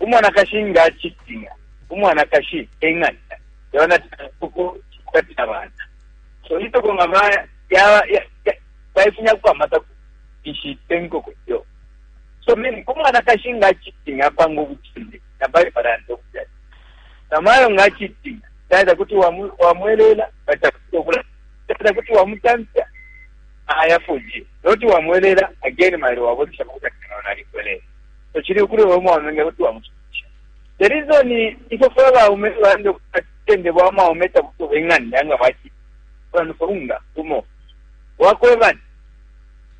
Umwanakashi nga acitinya, umwanakashi e ng'anda yabana uko cikupatila abana. So inkoko nga baifunyako amata ishite nkoko iyo. So mimi umwanakashi nga acitinya apanga ubucinde na Bible anda ukuti namayo nga acitinya dada kuti wamwelela batakuta okula dada kuti wamutamfya ayafunye noti wamwelela again mailo wabozesha makuta kana nalikwelele so chili ukuli we mwaume nge kuti wamusumisha the reason ifo fwe baume tulande kutende bwa mwaume tabuto benganda nga bati bantu funga tumo wakweba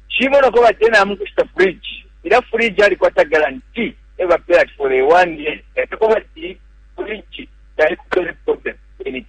shimo nako batena amukushita fridge ila fridge ali kwata guarantee eba pay at for a one year eko bati fridge tayikupele problem in it